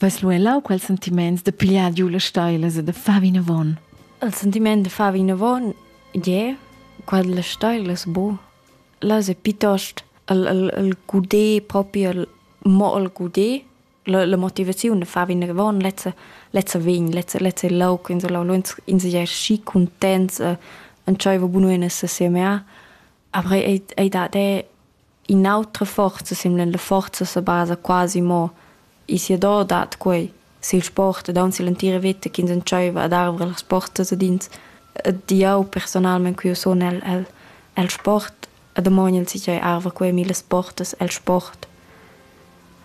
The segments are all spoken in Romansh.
Vas lu elau quels sentiments da pigliar giu las steilas e da far vinavon? Il sentiment da far vinavon, ie, quel las steilas, bu. Las è piuttost il, il, il gudé proprio, il, mo il gudé, la, la motivaziun da far vinavon, lezza, lezza vegn, lezza, lezza è lauc, in so lau in sei schi contents, e, entscheiva bunu in assieme a. Aber ei, ei dat è In autra forza simla la forza sa basa quasi mo e siador dat quei sil sport ed aunc sill'entira veta ch'ins entscheiva ad arver las portas ad ins ed jeu personalmein cu jeu sun el el el sport e damogn el si ch'ei arva quei millas portas el sport.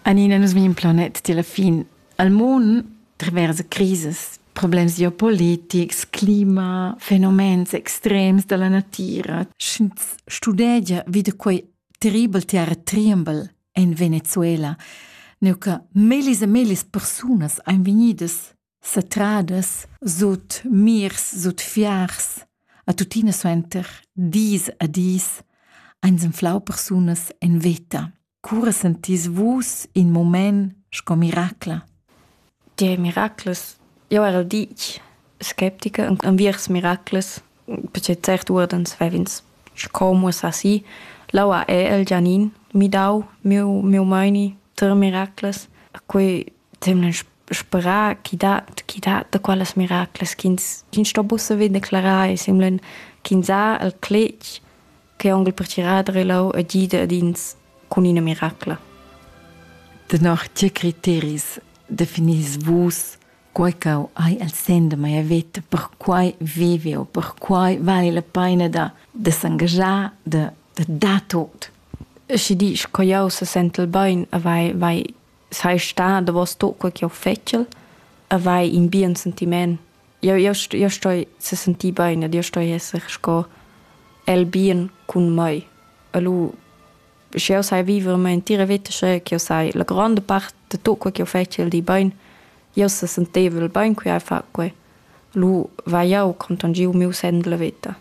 Anina, nus vegn planet tier la fin. El mund traversa crisas problems geopolitics, clima, fenomens extrems dalla natira. Sch'ins studegia wie de quei terribel terra tremble en Venezuela, neu che melis e melis persunas ein vegnidas satradas sut mirs, sut fiars, a tuttina suenter dis a dis, ein senflau persunas en veta. Cura sentis vus in mument sco miracla? Tge miraclas? Jau era ditg sceptica enviers miraclas, perche cert uordens vev'ins sco muossà si. L'aua è el Gianin midau miu, miu meini ter miraclas. Quei temlen sperà chi dat, chi dat da quellas miraclas ch'ins sto buca vedere declarar e semblan ch'ins ha el cletg che onkel pertgirar e lau e gida ad ins cun ina miracla. Tenor tge criteris definis vus quei ch'eu hai el sen de mia veta, per quai vivi o per quai vale la pena da, de s'engagiar, de, de dar tot. Schi disch, co jau se sentel bein, vai, vai sei sta davos sto quel che ho fetschel e vai in bien sentiment. Io io io stoi se sentir bene, io stoi esser sco el bien cun mei. E lu sche io sai vivere mia intera vita sche che io sai la grande parte de tutto quel che ho fetschel di bene, io se senteva bene qui a fa quei. Lu vai io con tangiu miu sen della vita.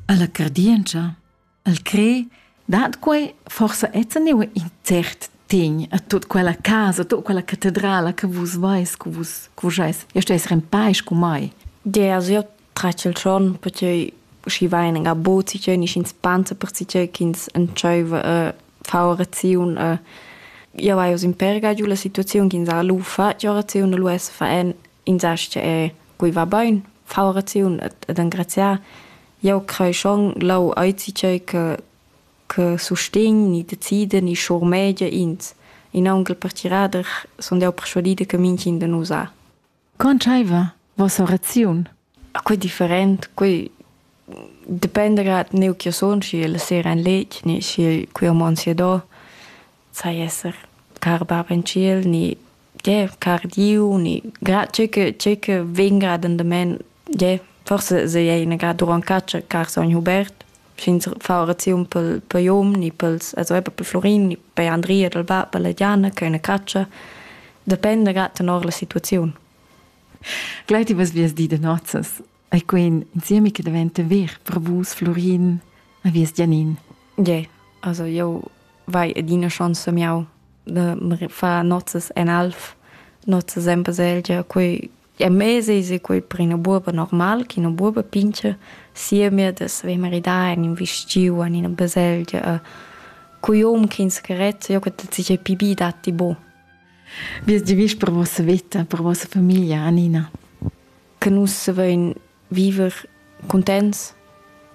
Alla cardienza El cre dat quei forsa enzaniu in cert tegn a tut quella casa, a tut quella catedrala che vus veis, che vus, che vus eis. Io steis en pais cu mai. Gea, also io tra il giorno potrei usciva in gabot si ch'in in spanza per si ch'ins entscheiva a fare orazione a io vai aus in per giu la situazione che ins ha lufa, io orazione lu es fa en insatge è guiva bain, far oraziun ed engraziar. Jau crai schon lau aizi tgei che che sustegn ni decida ni schurmegia ins. In aunc per tirader sun jau perschuadida che mintgin de nus ha. Con tscheiva vossa oraziun? Quei different, quei dependa grad neu ch'jeu sun, sch'jeu la sera en letg ni sch'jeu quei ho mond sia do. Sai esser car bab en tschiel ni yeah car Diu ni grad tgei che tgei che vegn grad endament, yeah forsa sei ei ina grad duront catscha car sogn Hubert, sch'ins fa oraziun pel per Jon ni pels also eber pel Florin ni per Andria dal bab e la Diana che ha üna catscha, dependa grad tenor la situaziun. Glei ti vas vias di de nozzas, ei quen insiemi che daventa ver per vus, Florin, a vies Gianin. Ie, also io vai adina chance miau de far nozzas en alf, nozzas en baselgia, quei è mesese quei per ina buoba normal, che una buoba pince sia mir de saver maridar in un vistiu in ina baselgia, a cui hom che ins carezza, io che ti pi bi datti bo. Wie die wichtig per vossa vita, per vossa famiglia, Anina? Che nus savein viver contents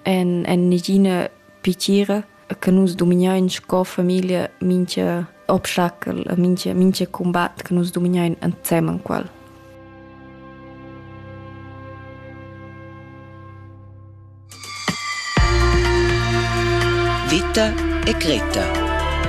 en, en negina piacere che nus dominiain sco famiglia mincha obstacol, mincha, mincha combat che nus dominiain ensemen quel. Vita e Greta